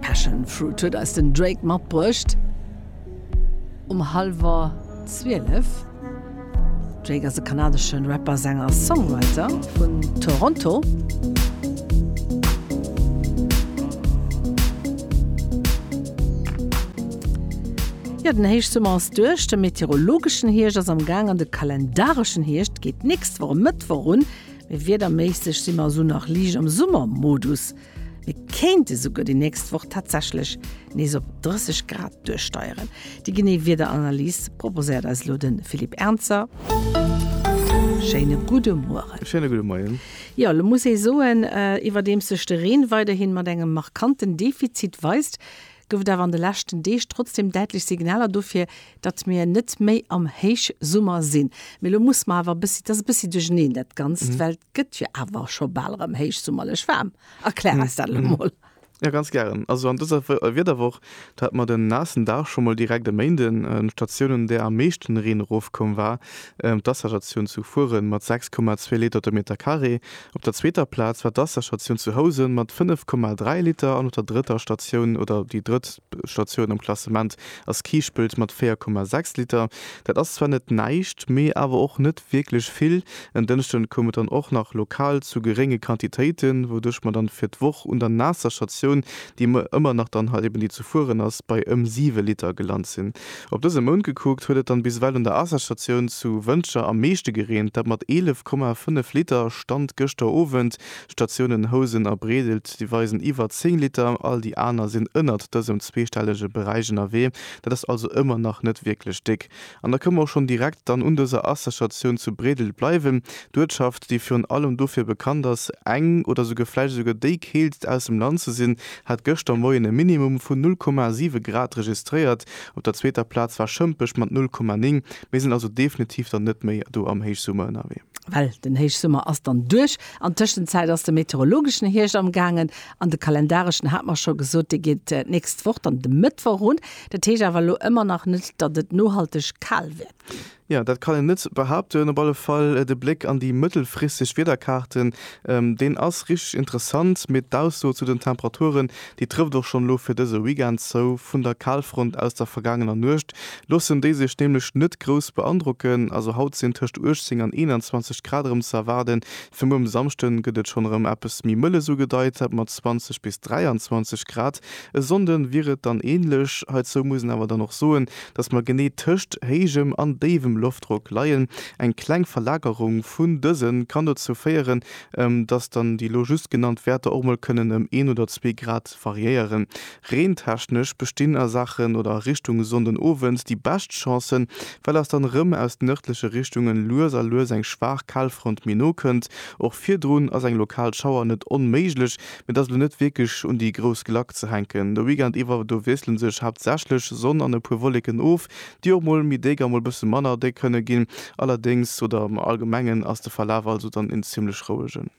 Passion Fruit huet eis den Drake matbruecht um hallwer 12. Drake ass e kanadesche Rapper, Sänger a Songwriter vun Toronto. Jo, den Héichsummer ass duerch, de meteorologeschen Hierscht ass am Gaang an de kalendareschen Hierscht geet d'nächst Woch Mëttwoch un. Mee wiederméisseg si mer esou nach liicht am Summermodus. Mir kéinte souguer déi nächst Woch tatsächlech nees op 30 Grad duerchsteieren. Déi genee Wiederanalys proposéiert eis elo de Philippe Ernzer. Schéine gudde Mueren. Schéine gudde Moien. Jo, elo muss ee soen, iwwerdeems sech de Reen weiderhi mat engem markanten Defizit weist, gouf et awer an de leschten Deeg trotzdem däitlech Signaler dofir, datt mir net méi am Héichsummer sinn. Mee elo musse mer awer e bëssi, et ass e bëssi duercherneen dat Ganzt, well et gëtt jo awer scho bal erëm héichsummerlech waarm. Erklär eis dat elo emol. Jo, ganz gären. Also an dëser Wiederwoch, do hate mer den naassen Dag scho mol direkt e Méinden. D'Statioun, un där am meeschten Reen erofkoum, war d'Wasserstatioun zu Furen mat 6,2 Liter de Meter Carré. Op der zweeter Plaz war d'Wasserstatioun zu Housen mat 5,3 Liter an op der drëtter Statioun, oder déi drëtt Statioun am Klassement ass Kiischpelt mat 4,6 Liter. Dat ass zwar net näischt, mee awer och net wierklech vill. En Dënschden koum et dann och nach lokal zu gerénge Quantitéiten, wouduerch mer dann fir d'Woch un der naasser Statioun, déi ëmmer nach dann halt eben déi zu fueren ass, bei ëm 7 Liter gelant sinn. Op dëse Mount gekuckt huet et dann bis ewell un der Asserstatioun zu Wëntger am meeschte gereent, dat mat 11,5 Liter, Stand gëschter Owend. D'Statiounen Housen a Breedelt déi weisen iwwer 10 Liter, all déi aner sinn ënnert dësem zweestellege Beräich ënnerwee. Dat ass also ëmmer nach net wierklech déck. An da kënne mer och schonn direkt dann un dëser Asserstatioun zu Breedelt bleiwen, d'Uertschaft déi virun allem dofir bekannt ass eng oder souguer vläicht esouguer déi keeltst aus dem Land ze sinn, hat gëschter Moien e Minimum vun 0,7 Grad registréiert. Op der zweeter Plaz war Schëmpech mat 0,9. Mir sinn also definitiv dann net méi do am Héichsummer ënnerwee. Well den Héichsummer ass dann duerch. An Tëschenzäit ass de meteorologeschen Hierscht amgaangen an de kalendareschen, hat mer scho gesot, dee geet d'nächst Woch dann de Mëttwoch un. Dat heescht awer elo ëmmer nach net, datt et nohalteg kal wäert ginn. Jo, dat kann een net behaupten. Op alle Fall de Bléck an déi mëttelfristeg Wiederkaarten, deen ass richteg interessant, mee d'Ausso zu den Temperaturen, déi trëfft och schonn elo fir dëse Weekend zou. Vun der Kalfront aus der vergaangener Nuecht loossen déi sech nämlech net grouss beandrocken. Also haut sinn tëscht 18 an 21 Grad erëm ze erwaarden. Fir muer um Samschde gëtt et schonn erëm eppes méi mëlles ugedeit, dat mat 20 bis 23 Grad. E Sonnde wier et dann änlech. Heizou muss een awer dann och soen, datt mer genee tëscht héijem an déiwem Loftdrock leien. Eng kleng Verlagerung vun dëse kann dozou féieren, datt dann déi elo just genannt Wäerter och mol kënnen ëm een oder zwee Grad variéieren. Reentechnesch bestinn a Saachen oder a Richtung Sonndenowend déi bescht Chancen, well eis dann erëm aus nërdleche Richtunge lues a lues eng schwaach Kalfront méi no kënnt. Och virdrun ass eng lokal Schauer net onméiglech, Mee dat ass elo net wierklech un déi grouss Glacc ze hänken. De Weekend iwwer do wiessle sech haaptsächlech Sonn an e puer Wolleken of, déi och mol méi déck a mol e bësse manner déck kënne ginn. Allerdéngs, oder am Allgemengen, ass de Verlaf also dann een zimmlech rouegen.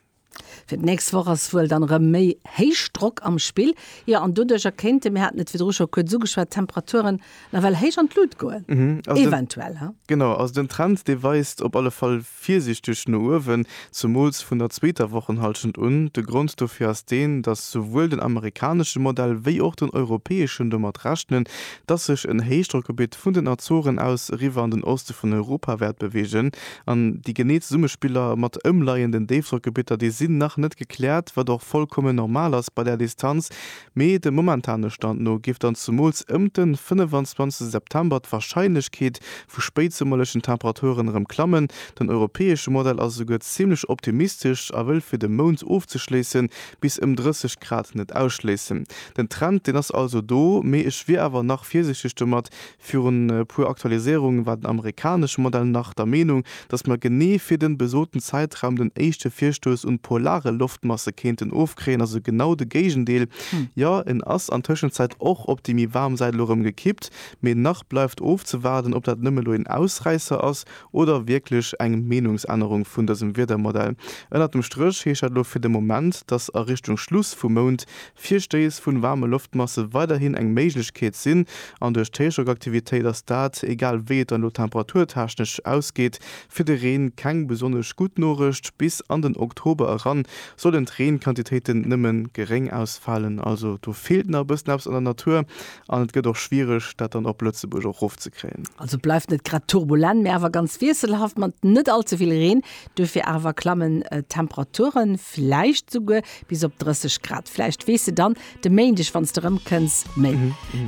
Fir d'nächst Woch ass wuel dann erëm méi Héichdrock am Spill, jo, an doduercher kéinte, mir haten et virdru scho kuerz ugeschwat, d'Temperaturen Nawell héich an d'Lut goen, eventuell, he? Genau, also den Trend, dee weist op alle Fall virsiichteg no uewen, zemools vun der zweeter Wochenhallschent un. De Grond dofir ass deen, dass souwuel den amerikanesche Modell wéi och den europäeschen domat rechnen, dass sech en Héichdrockgebitt vun den Azoren aus eriwwer an den Oste vun Europa wäert beweegen. An déi genee Zesummespiller mat ëmleienden Déifdrockgebitter, déi sinn nach net gekläert, wat och vollkommen normal ass bei där Distanz, Mee dem momentane Stand no géif dann zemools ëmt den 25 September d'Warscheinlechkeet vu spéitsummerlechen Temperaturen erëm klammen. Den europäesche Modell ass esouguer zimmlech optimistesch a wëll fir de Mount ofzeschléissen bis ëm 30 Grad net ausschléissen. Den Trend deen ass also do, mee ech wier awer nach virsichteg domat Virun e puer Aktualiséierungen war den amerikanesche Modell nach der Meenung, datt mer genee fir den besoten Zäitraum den éischte Virstouss un polare Loftmasse kéinten ofkréien, ass e genau de Géigendeel. Jo, en ass an Tëschenzäit och op déi méi waarm Säit elo erëm gekippt, mee nach bleift ofzewaarden, ob dat nëmme elo een Ausräisser ass oder wierklech eng Meenungsännerung vun dësem Wiedermodell. Ënnert dem Stréch heescht dat elo fir de Moment, datt a Richtung Schluss vum Mount Virstéiss vu waarme Loftmasse weiderhin eng Méiglechkeet sinn an duerch d'Héichdrockaktivitéit ass dat, egal wéi et dann elo temperaturtechnesch ausgeet, fir de Reen keng besonnesch gutt Norecht. Bis an den Oktober eran sollen d'Reenquantitéiten nëmme geréng ausfalen. Also do feelt nach e bëssen eppes an der Natur an et gëtt och schwiereg, dat dann op Lëtzebuerg och erofzekréien. Also bleift net grad turbulent, mee awer ganz wiesselhaft mat net all ze vill Reen. Dofir awer klammen d'Temperature vläicht souguer bis op 30 Grad. Vläicht weess de dann de Méindeg, wann s de erëmkënns, méi.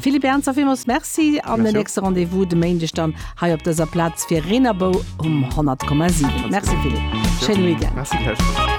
Philippe Ernzer, villmools Merci an den nächste Rendez-vous de Méindeg dann hei op dëser Plaz fir Reen a Bou um 100,7. Merci Philippe, schéine Weekend.